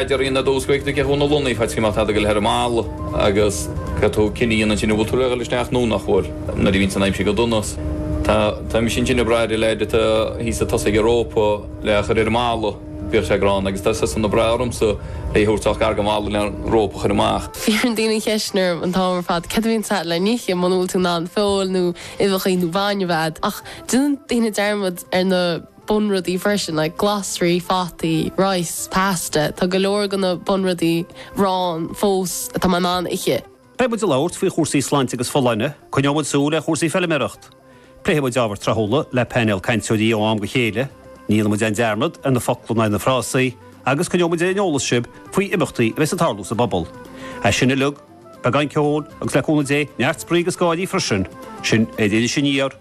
Idir Aoine 12 go 20 na Lúnaí, Feicim an t-eadaigh le ar an mball agus go tú cinne dhéanamh ansin a bhfuil tú le dhul isteach nó nach bhfuil. Nuair a bhíonns in aimsir go dona, tá tá mise ansin ag brath ar a leithéid atá thíos ag tosaigh Europa le a chur ar an mball. Bíodh sé gránna agus tá siadsan ag brath ormsa é a thabhairt ach gar go mall le Europa a chur amach. Fiafraíonn daoine an cheist orm an t-am ar fad cad a bhíonn sa le n-ithe muna bhfuil tú in ann feoil nó uibheachaí ná bainne a bheith a'd ach déanann daoine dearmad ar na bunrudaí freisin, like glasraí, fataí, rice, pasta, tá go leor go na bunrudaí ann fós atá mé in ann ithe. Beidh muid ag labhairt faoi chúrsaí sláinte agus folláine, coinneoidh muid súil ar chúrsaí feilméarachta, pléifidh muid ábhar tráthúla le painéal cainteoirí ó am go chéile, ní dhéanfaidh muid aon dearmad ar na focla ná ar na frásaí, agus coinneoidh muid ar an eolas sibh faoi imeachtaí a bheas ag tarlú sa bpobal. É sin uilig, beagán ceoil agus le cúnamh Dé, neart spraoi agus gáirí freisin, sin é an Iris Aniar!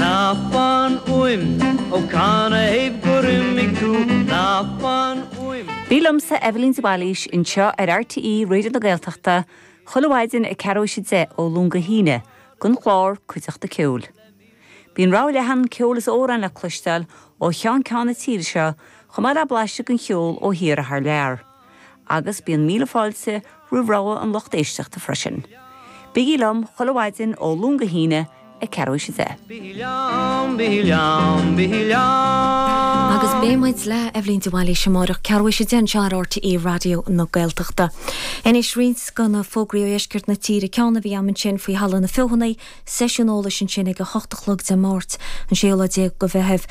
Ná fan uaim, ó canathaobh gur imigh tú, ná fan uaim. Bí liomsa, Eibhlín de Bhailís, anseo ar RTÉ Raidió na Gaeltachta chuile mhaidin ag ceathrú is a deich ó Luan go hAoine don chlár Cuideachta Ceoil. Bíonn rogha leathan ceoil is amhráin le cloisteáil ó cheann ceann na tíre seo chomh maith le blaiseadh den cheol ó thíortha thar lear. Agus bíonn míle fáilte roimh rogha an lucht éisteachta freisin. Bígí liom chuile mhaidin ó Luan go hAoine ag ceathrú is a deich. Bígí liom, bígí liom, bígí liom. Agus beidh muid le Eibhlín de Bhailís amáireach ceathrú is a deich anseo ar RTÉ Raidió na Gaeltachta. Anois roinnt de na fógraí ó dheisceart na tíre, ceann a bhí agam ansin faoi Halla na Feothanaí, Seisiún eolais ansin ag 8 a chlog Dé Máirt, an 16 lá de Mheitheamh.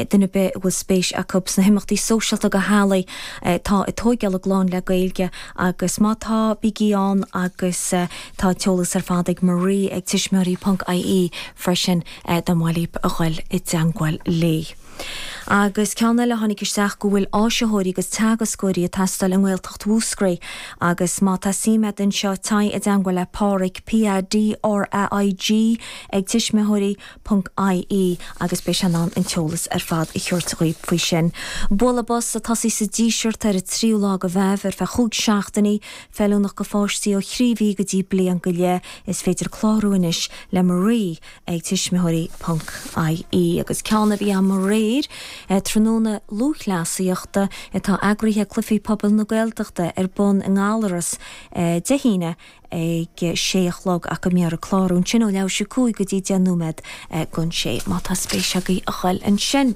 Duine ar bith a bhfuil spéis acu sna himeachtaí sóisialta go theaghlaigh, tá ag tóigeáil clainne le Gaeilge agus má tá, bígí ann agus tá an t-eolas ar fad ag Marie ag tuismitheoirí ponc ie freisin dá mba mhaith libh a ghoil i dteangmháil léi. Agus ceann eile a tháinig isteach go bhfuil áisitheoirí agus teagascóirí ag teastáil i nGaeltacht Mhúscraí agus má tá suim agat anseo téigh i dteangmháil le Pádraig PADRAIG ag tuismitheoirí ponc IE agus beidh sé in ann an t-eolas ar fad a thabhairt dhaoibh faoi sin. Bualadh bos ag tosaí sa Díseart ar an tríú lá go Mheitheamh ar feadh chúig seachtainí, feiliúnach go pháistí ó thrí mhí go dtí bliain go leith. Is féidir clárú anois le Marie ag tuismitheoirí. ie agus ceann a bhí ann aréir tráthnóna lúthchleasaíochta atá eagraithe ag Cluichí Pobail na Gaeltachta ar bun i nGallarus Dé hAoine ag sé a chlog ach go mbeidh an clárú ansin ó leathuair tar éis 5 go dtí 10 nóiméad gon sé má tá spéis agaibh a dul ansin.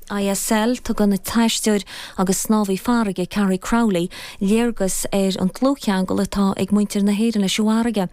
ISL, tugann an t-aisteoir agus snámhaí farraige Carrie Crowley léargas ar an dlúthcheangal atá ag muintir na hÉireann leis an bhfarraige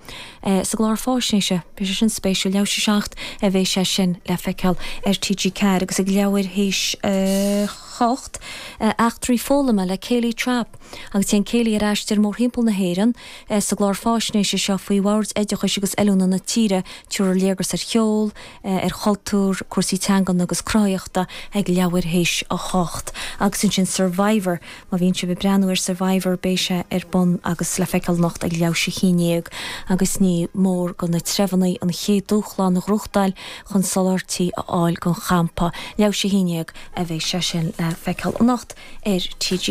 sa gclár fáisnéise. Beidh sé sin spéisiúil. Leathuair théis a seacht a bheidh sé sin le feiceáil ar TG4 agus ag leathuair théis a hocht, Eachtraí Foghlama le Kayleigh Trappe agus téann Kayleigh ar aistear mórthimpeall na hÉireann sa gclár fáisnéise seo faoi bhoird oideachais agus oiliúna na tíre. Tabharfar léargas ar cheol, ar chultúr, cúrsaí teangan agus cruthaitheachta ag leathuair théis a 8. Agus ansin Survivor, má bhíonn sibh ag breathnú ar Survivor beidh sé ar bun agus le feiceáil anocht ag leathuair théis a haon déag agus ní mór do na treibheanna an chéad dúshlán a ghnóthachtáil chun soláthairtí a fháil don champa. Leathuair théis a haon déag a bheidh sé sin le feiceáil anocht ar TG.